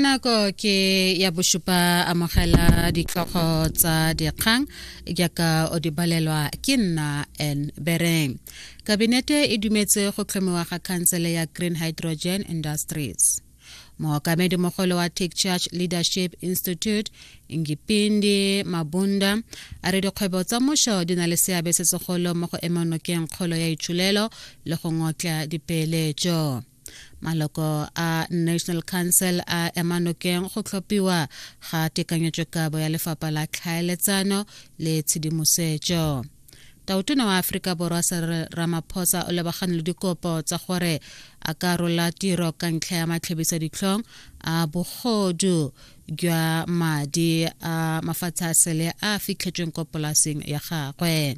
nako ke ya bosupa amogela ditlhogo tsa dikgang jaaka o di balelwa ke nna n bereng kabinete e dumetse go tlhomiwa ga khansele ya green hydrogen industries mookamedi mogolo wa tech church leadership institute ngipindi mabunda a re dikgwebo tsa mošo di na le seabe se segolo mo go emonokeng kgolo ya itshulelo le go ngotla dipeeletso maloko a national council a ema nokeng go tlhophiwa ga tekanyetsokabo ya lefapha la tlhaeletsano le tshedimosetso tautona wa aforika borwa sere ramaphosa o lebagane le dikopo tsa gore a ka rola tiro ka ntlha ya matlhebisa ditlhong a bogodu jwa madi a mafatshe a sele a fitlhetsweng ko polaseng ya gagwe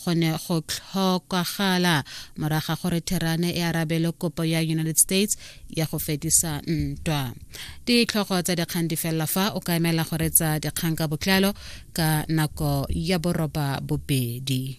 go ne go tlhokagala morago ga gore therane e arabele kopo ya united states ya go fedisa ntwa ditlhogo tsa dikgang di felela fa o ka emela go retsa dikgang ka botlalo ka nako ya boroba bobedi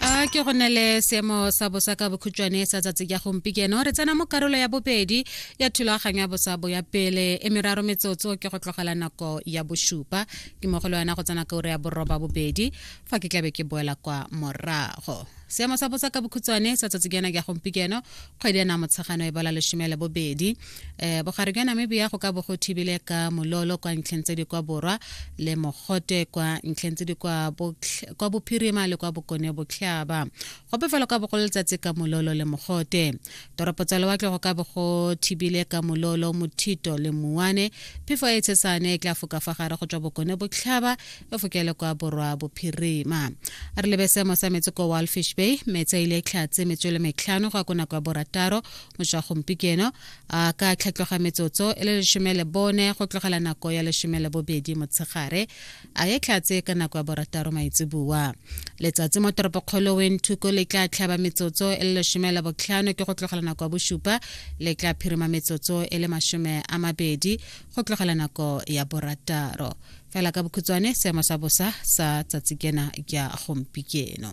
a ke go ne le seemo sa bosa ka bokhutšwane sa tsatsi ya gompikeno re tsena mo karolo ya bobedi ya thulaganyo ya bosa bo ya pele e meraro metsotso ke go tlogela nako ya bosupa ke mo go le wena go tsena ka ure ya boroba bobedi fa ke tlabe ke boela kwa morago seemo sa bosa ka bokhutshwane sa tsatsi kena ya gompikeno kgwedi ya namotshegano e bola lesome le bobedi um bogare jwa namibia go ka bo go thibile ka mololo kwa ntlheng tse di kwa borwa le mogote kwa ntlheng tse di kwa bophirima le kwa bokone botlhaba gope fela ka bogolo letsatsi ka mololo le mogote toropo tsa lewatle go ka bo go thibile ka mololo mothito le muane phefo e tshesane e tla foka fa gare go tswa bokone botlhaba e fokele kwa borwa bophirima a re lebe seemo sa metsi ko walfish bay metsi a ile e tlhatse metswele metlhano go ya ko nako ya borataro mošwa gompikeno a ka tlhatloga metsotso e le lesome le bone go tlogela nako ya lesome le bobedi motshegare a ye tlhatse ka nako ya borataro maitseboa letsatsi mo toropokgolo wenthuko le tla tlhaba metsotso e le lesome le botlhano ke go tlogela nako ya bosupa le tla phirima metsotso e le masome a mabedi go tlogela nako ya borataro fela ka bokhutswane seemo sa bosa sa tsatsi kena ya gompikeno